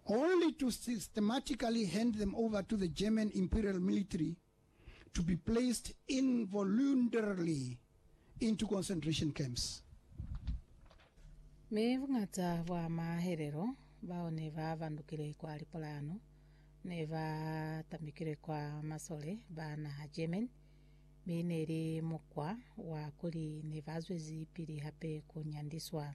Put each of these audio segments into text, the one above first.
only to systematically hand them over to the German Imperial Military to be placed involuntarily into concentration camps. Mi buñata bwa mahelelo bao ne ba bandukile kwa lipolahano ne ba tambikilwe kwa masole ba naha German, mi ne li mukwa wa kuli ne ba zwezi pili hape ku nyandiswa.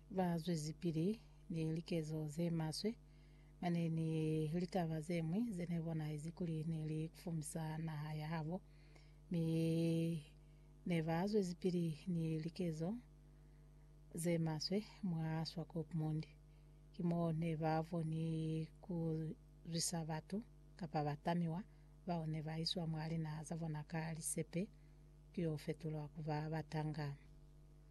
Ba zwezipili ni likezo ze maswe. Mane ni litaba ze ñwi ze ne bonahezi kuli ne li kufumisa naha ya habo. Mi ne ba zwezipili ni likezo ze maswe mwa Swakopmund. Ki mo ne ba boni ku zwisa batu, kapa batamiwa, bao ne ba iswa mwa linaha za bona ka lisepe ku yo fetulwa ku ba batanga.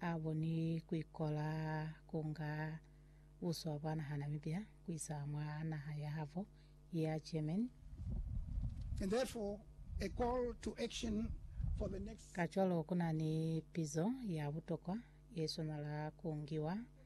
a boni kuikola ku nga buswa bwa naha Namibia kuisa mwa naha ya habo ya Germany. And therefore, a call to action for the next. Kacwalo ku na ni pizo ya butokwa ye swanela ku ngiwa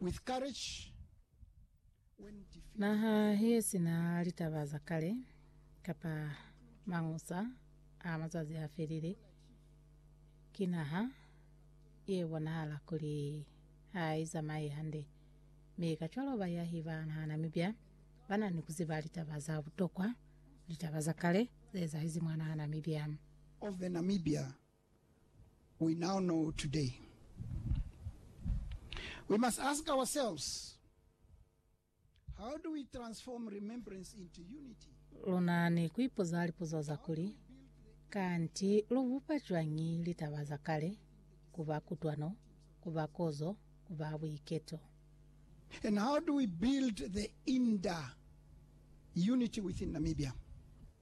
with courage when defeated. Naha ye si na litaba za kale kapa mañusa a mazazi a felile ki naha ye bonahala kuli ha i zamaye hande, mi kacwalo bayahi ba naha Namibia ba na ni ku ziba litaba za butokwa, litaba za kale ze ezahezi mwa naha Namibia. of the Namibia. We now know today. We must ask ourselves, How do we transform remembrance into unity? Lu na ni ku ipuza lipuzo za kuli, Kanti lu bupa cwañi litaba za kale ku ba kutwano, ku ba kozo, ku ba buiketo? And how do we build the inter unity within Namibia?